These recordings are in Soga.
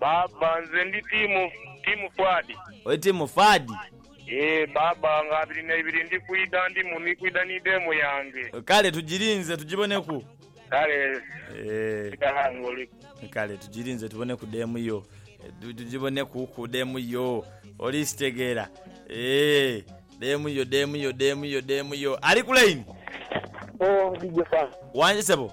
Baaba nze ndi tiimu tiimu Fuadi. Oli tiimu Fuadi? Eeh baaba nga abiri na ibiri ndi kwidha ndimu ni kwidha ni deemu yange. Kale tujirinze tujiboneku. Kale Eeh sigala nga oliku. Kale tujirinze tuboneku deemu yo. Tujiboneku ku deemu yo. Oli sitegeera eeh deemu yo deemu yo deemu yo deemu yo. Ali ku line? Ooh DJ Fans. Wangi sebo.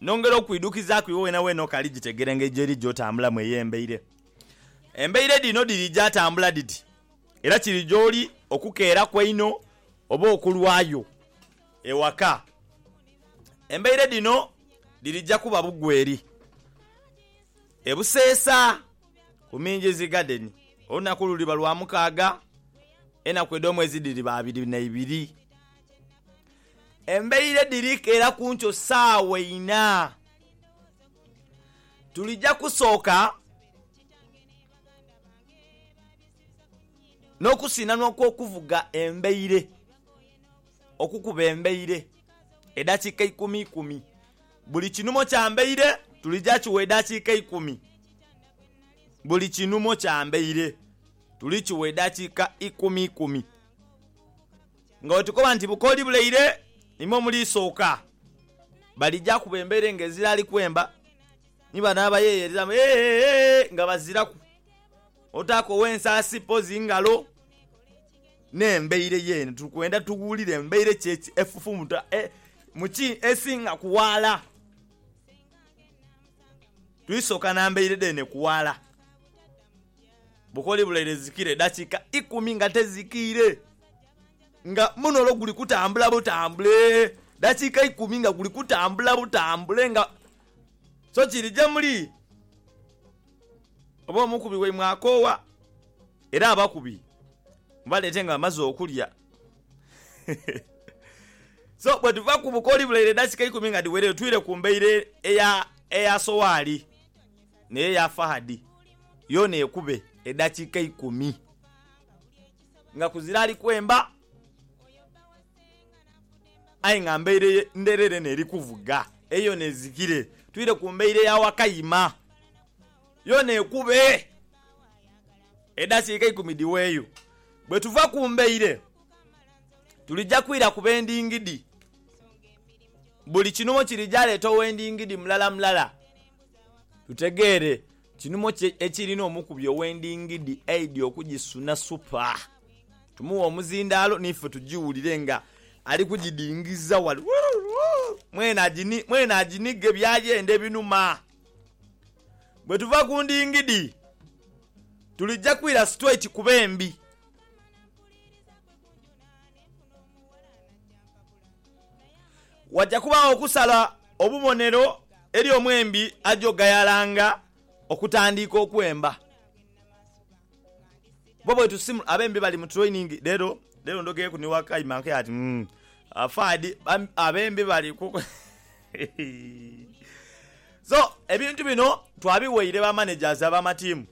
Nongera okwidhukizaaku iwe wenaweena okaali gitegera engeri gy'eri gy'otambulamu ey'embaire. Embaire dhino dhiriija atambula dhiti, era kiri gy'oli okukeeraku einho oba okulwayo ewaka. Embaire dhino dhirija kuba bugwe eri. E Buseesa ku Minjizi Garden, olunaku luliba Lwamukaaga, enaku edh'omwezi dhiriba abiri na ibiri. Embaire dhiri keera ku nkyo saawa ina. Tulija kusooka n'okusinhanwa kw'okuvuga embaire, okukuba embaire, edhakiika ikumi ikumi. Buli kinumo kya mbaire tulija kigha edhakiika ikumi. Buli kinumo kya mbaire tulikigha edhakiika ikumi ikumi. Nga bwe tukoba nti bukooli buleire imwe muliisooka, balija kuba embeere nga eziraali kwemba, ni bano abayeeyereramu eeeee nga baziraku otaaka ow'ensaasi mpozi ngalo. N'embeire y'eno. Tuli kwenda tuwulire embeire ki efufumuta e, mu ki esinga ku ghala. Tuliisooka na mbeire dheene ku ghala. Bukooli buleire zikira eddakiika ikumi nga tezikiire. nga muno olwo guli kutambula butambule dakiika ikumi nga guli kutambula butambule nga so kiri gye muli oba omukubi waimwe akoowa era abakubi mubaleete nga bamaze okulya so bwe tuva ku bukooli bulaire edakiika ikumi nga dhiwereyo twire ku mbaire eya eya Sowaali n'eyo eya Fahadi yoona ekube edakiika ikumi. nga kuzira ali kwemba aye nga mbaire ye ndherere n'eri kuvuga. Eyo yoona ezikire twire ku mbaire ya Wakayima, yoona ekube. Edhakiika eikumi dhiweeyo. Bwetuva ku mbaire tulija kwira ku b'endingidi. Buli kinhumo kirija leeta ow'endingidi mulara mulala tutegeere Kinhumo ki ekirina omukubi ow'endingidi aidya okugisuna supa? Tumuwe omuzindaalo n'ife tugiwulire nga ali kugidingiza wale. Mwene aginige by'ayenda ebinuma. Bwe tuva ku ndingidi, tulija kwira situeiti ku bembi. Waja kubaagho okusala obubonero eri omwembi aja ogayalanga okutandiika okwemba. Bo bwetusimula, abembi bali mu training lero, lero ndogeeku ni Wakaima nkaire ati umm Faadi abembi bali ku So ebintu bino twabiwaire ba managers abamatiimu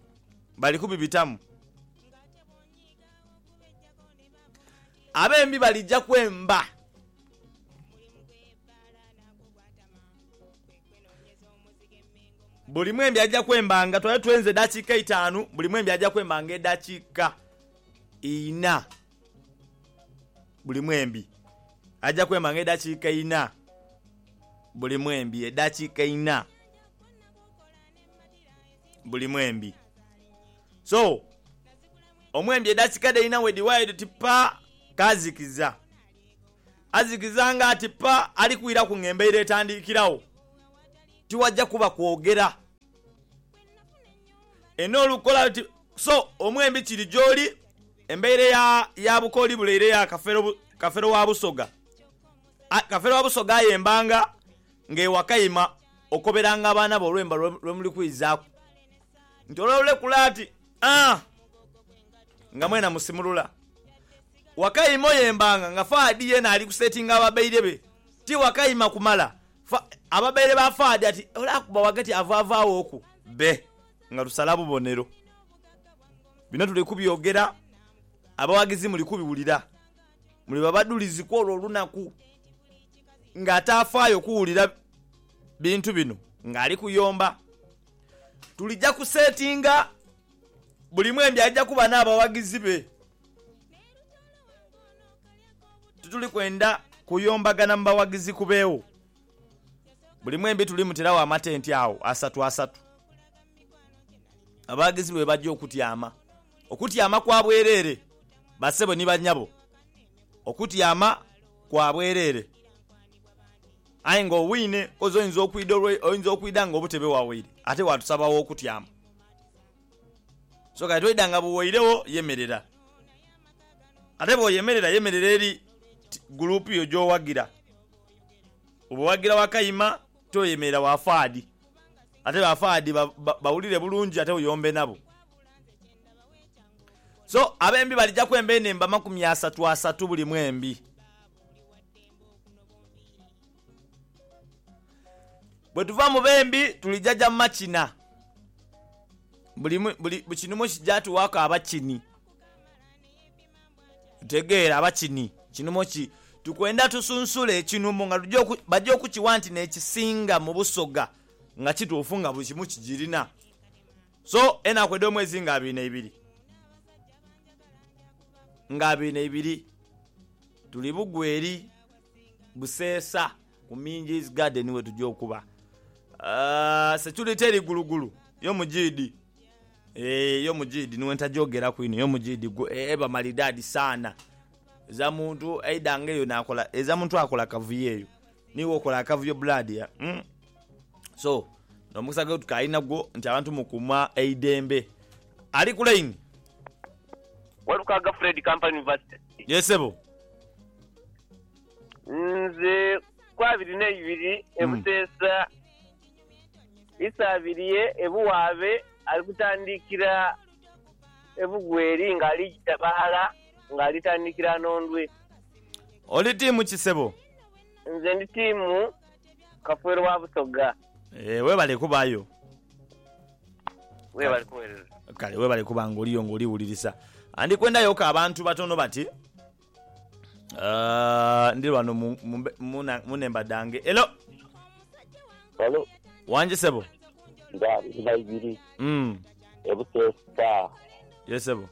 bali kubibitamu. Abembi balija kwemba. Buli mwembi aja kwembanga twale twenze edhakiika eitaanu, buli mwembi aja kwembanga edhakiika ina. Buli mwembi aja kwembanga edhakiika ina, buli mwembi edhakiika ina, buli mwembi. So, omwembi edhakiika dhe ina bwedhiwaayo dhiti pa, kaazikiza. Azikiza nga ati pa ali kwiraku ng'embeira etandikiragho, tiwaja kuba kwogera. Eno olukola luti so omwembi kiri gyoli, embeire ya ya bukooli buleire ya kafero kafero wa Busoga. A Kafero wa Busoga aye embanga ng'e Wakaima okoberanga abaana be olwemba lwe muli kwizaaku nti olwalulekula ati. Aah! Nga mwena musimulula. Wakayima oyo embanga nga Fahad yeena ali kusetinga ababaire be. Ti wakayima kumala. Fa, ababaire ba Fahad ati ole akuba wagati avaavaawooku bbe nga lusala bubonero. Bino tuli kubyogera, abawagizi muli kubiwulira. Muli babadhulizi kw'olwo olunaku. Nga ataafaayo kuwulira bintu bino nga ali kuyomba. Tulija kusetinga buli mwembi aja kuba n'abawagizi be. Tituli kwenda kuyombagana mu bawagizi kubeegho buli mwembi tuli muteragho amatenti agho asatu asatu. Abawagizi be baja okutyama okutyama kwa bwereere basebo ni banyabo, okutyama kwa bwereere. Aye nga owiine oze oinza okwidha olwe oinza okwidha nga obutebe wawaire ate waatusaba aw'okutyama. So kale toidha nga bwe wairegho yemerera. Ate bw'oyemerera yemerera eri ti guluupu yo gy'owagira. Oba owagira Wakayima toyemerera wa faadi ate ba faadi ba ba bawulire bulungi ate oyombe nabo. So abembi balija kwemba enhemba makumi asatu asatu buli mwembi. Bwetuva mu bembi tulijaja mu makina. Buli mu- buli buli kinhumo kija tughaku abakini. Otegeera abakini kinhumo ki. Tukwenda tusunsule ekinhumo nga tuja oku baja okukigha nti n'ekisinga mu Busoga nga kituufu nga buli kimu kigirina. So enaku edh'omwezi nga abiri na ibiri, nga abiri na ibiri, tuli bugwa eri Buseesa ku Minji's Garden we tuja okuba. Security eri gulugulu, yo mujiidhi. Eeh, yo mujiidhi ni we ntagyogeraku inho, yo mujiidhi gwe, eba malidaadi saana. Eza muntu aidha nga eyo naakola, eza muntu akola kavuyo eyo. Niiwe okola akavuyo blood ya umm so nomukisa gwetukyali nagwo nti abantu mukuuma eidembe. Ali ku line. Walukaga Fred Kampala University. Yes sebo. Nze ku abiri neibiri e Buseesa Isabirye e Buwaabe ali kutandikira e Bugweri nga ali jita baghala. nga litandikira Nondwe. Oli tiimu ki sebo? Nze ndi tiimu Kafwero wa Busoga. Eeh webale kubaayo. Webale kuwereza. Kale webale kuba nga oliyo nga oli wulirisa. Andikwenda yoka abantu batono bati Ah, ndi wano mu, mu, mu, mu nemba dange. Hello. Hello. Wangi sebo. Nga nga ibiri. Mm. e Buteesita. Ye sebo.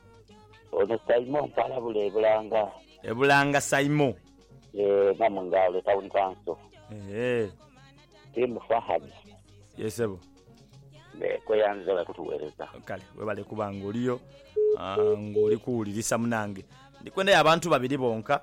Ono Saimo mpalabula e Bulanga. E Bulanga Saimo. Yee Namungaalo e Town Council. Eehee. Team Fahad. Ye sebo. Mbe kweyanziza webale kutuwereza. Kale webale kuba nga oliyo nga oli kuwulirisa munange. Ndikwendayo abantu babiri bonka.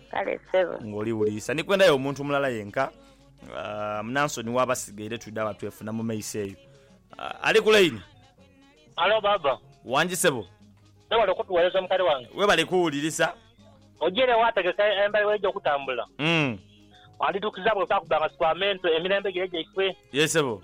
Kale ssebo. Ng'oli wuliisa. Ni kwendayo omuntu mulala yenka, Munansoni w'abasigaire twidha wa twefuna mu maiso eyo. Ali ku laini? Halo, baaba. Wangi ssebo. Webale okutuweereza mukali wange. Webale kuwulirisa. Ogiire waategeka embayo w'eija okutambula? Wandidhukiza bw'otaakubba nga si kwa mentu emirembe gire gyaife. Yee ssebo.